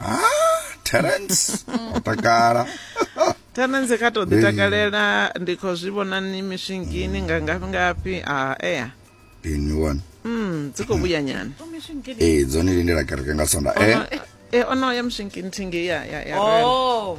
ah terence o takala tenenze kha to ḓi takalela ndi khou zwi vhona ni mishingini nga ngafhi ngafhi a ea ini one mm dzi khou vhuya nyana ee dzone lindela kereke nga sonda e e ono ya mishingini thingi ya ya ya rela. Oh.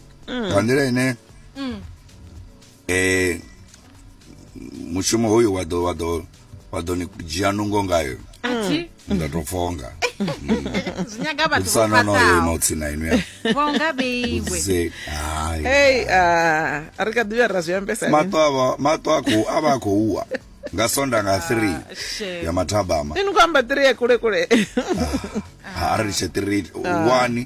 mm. nga nḓila ine mm. eh mushumo hoyu wa ḓo wa ḓo wa ḓo ni dzhia nungo ngayo mm. nda tou pfonga zvinyaga vathu vofasao notsina inu ya vonga beiwe hey uh, ri kha ḓivha ra zwi ambesa mato ava mato akho ava akho uwa nga sonda nga 3 ah, ya mathabama ini ku amba 3 ya kule kule ah, ha ri tshe 3 1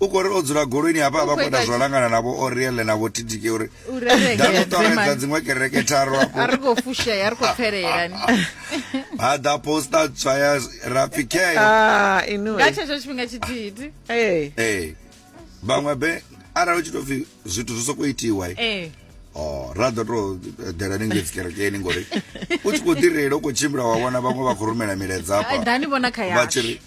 u khou ri o dzula goloini hafha a vha khou ita zwo langana navho oriele navho titike uri nda ḓo ṱoredza dziṅwe kereke tharu afho a ri khou fushea a ri khou pfelelani ha ḓa posta tswa ya rapfi keyo ah, nga tshetsho tshifhinga tshithihi ee vhaṅwe be arali u tshi tou pfi zwithu zwi sokou itiwa ee Oh, ra ḓo tou dela ni ngedzi kerekeni ngori u tshi khou ḓi reila u khou tshimbila wa vhona vhaṅwe vha khou rumela miledza hafha vha tshi ri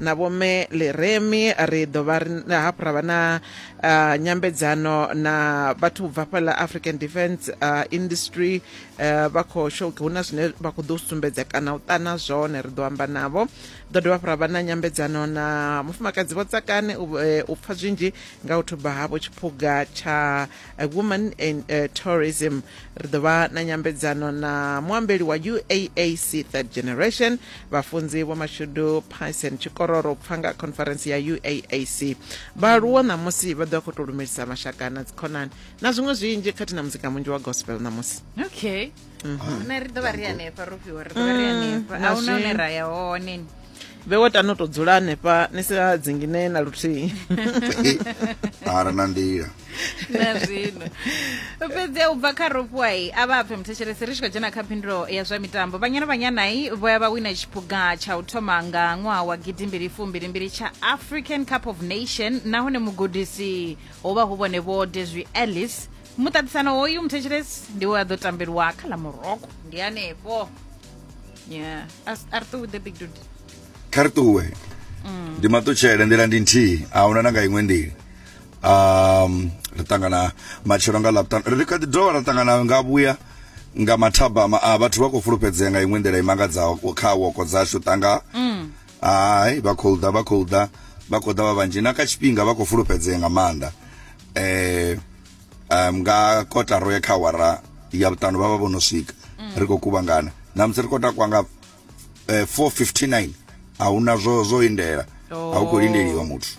na vhome leremi ri ḓo vha hafhu ra vha na uh, nyambedzano na vhathu bva fhala african defence uh, industry uh, vha khou shoke hu na zwine vha khou ḓo sumbedza kana u ṱana zwone ri ḓo amba navho ḓo dovha hafhu ra vha na nyambedzano na mufumakadzi vho tsakane u, uh, u pfa zwinzhi nga u thuba havho tshiphuga tsha a woman in uh, tourism ri ḓo vha na nyambedzano na muambeli wa uaac third generation vhafunzi vho mashudu pyson tshikororo pfa nga conference ya uaac vhaaluwo ṋamusi vha ḓo vha khou tou lumelisa mashaka na dzikhonani na zwiṅwe zwinzhi khathihi na muzika munzhi wa gospel ṋamusi okay mm -hmm. na ri ḓo vha ri hanefha ro fhiwa ri ḓo vha ri mm, hanefha a huna hune ra ya hone vhewe tano to dzula hanefha ni sa dzingine na luthihi ara na nḓila na zwino fhedzi u bva kha ropuwai a vha pfe muthetshelesi ri tshi khou dzhena kha phindulo ya zwa mitambo vhanyana vhanyanai vho ya vha wina tshiphuga tsha u thoma nga ṅwaha wa gidimbili fumbilimbili tsha african cup of nation nahone mugudisi ho vha hu vhone vho deswi ellis muṱaṱisano hoyu muthetshelesi ndi we a ḓo tambeliwa kha ḽa muroko ndi hanefho yeah As- a ri ṱuwi the big dude kha ri ṱuwe ndi maṱutshele nḓila ndi nthihi a huna na nga iṅwe nḓila um ri ṱangana matshelo nga laptan ri kha ḓi dovha ra ṱangana nga vhuya nga mathabama a vhathu vha khou fulufhedzea nga iṅwe nḓila i mangadzaho kha woko dzashu ṱanga hai vha khou ḓa vha khou ḓa vha khou ḓa vha vhanzhi na kha tshifhinga vha khou fulufhedzea nga maanḓa eh um, nga kotaro ya kha awara ya vhuṱanu vha vha vho no swika ri khou kuvhangana na musi ri khou takwa nga eh, 459 a hu na zwo zwo lindela a hu khou lindeliwa muthu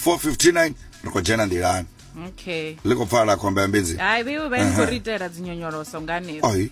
459 ri khou dzhena nḓilani okay ḽi khou pfala khomba ya mbedzi hai vheiwe vha ni khou ri itela dzinyonyoloso nga hanefho ai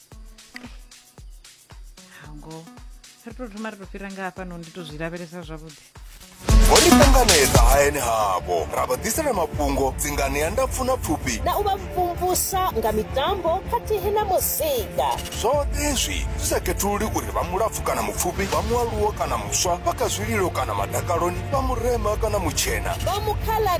hango ri to thoma ri to fhira nga hafha no ndi to zwi lavhelesa zwavhuḓi vho ni ṱanganedza hayani havho ra vha ḓisela mafhungo dzinganea ndapfu na pfufhi na u vha mvumvusa nga mitambo khathihi na muzika zwoṱhe izwi zwi sa khethululi uri vha mulapfu kana mupfufhi vha mualuwo kana muswa vha kha zwililo kana madakaloni vha murema kana mutshena vha mukhala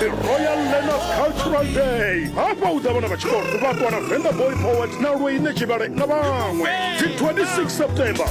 the royal learners cultural day hafha hu ḓa vhana vha tshikolo vha ṱuwa na venḓa boy poet na lweine tshivhale na vhaṅwe dzi 26 september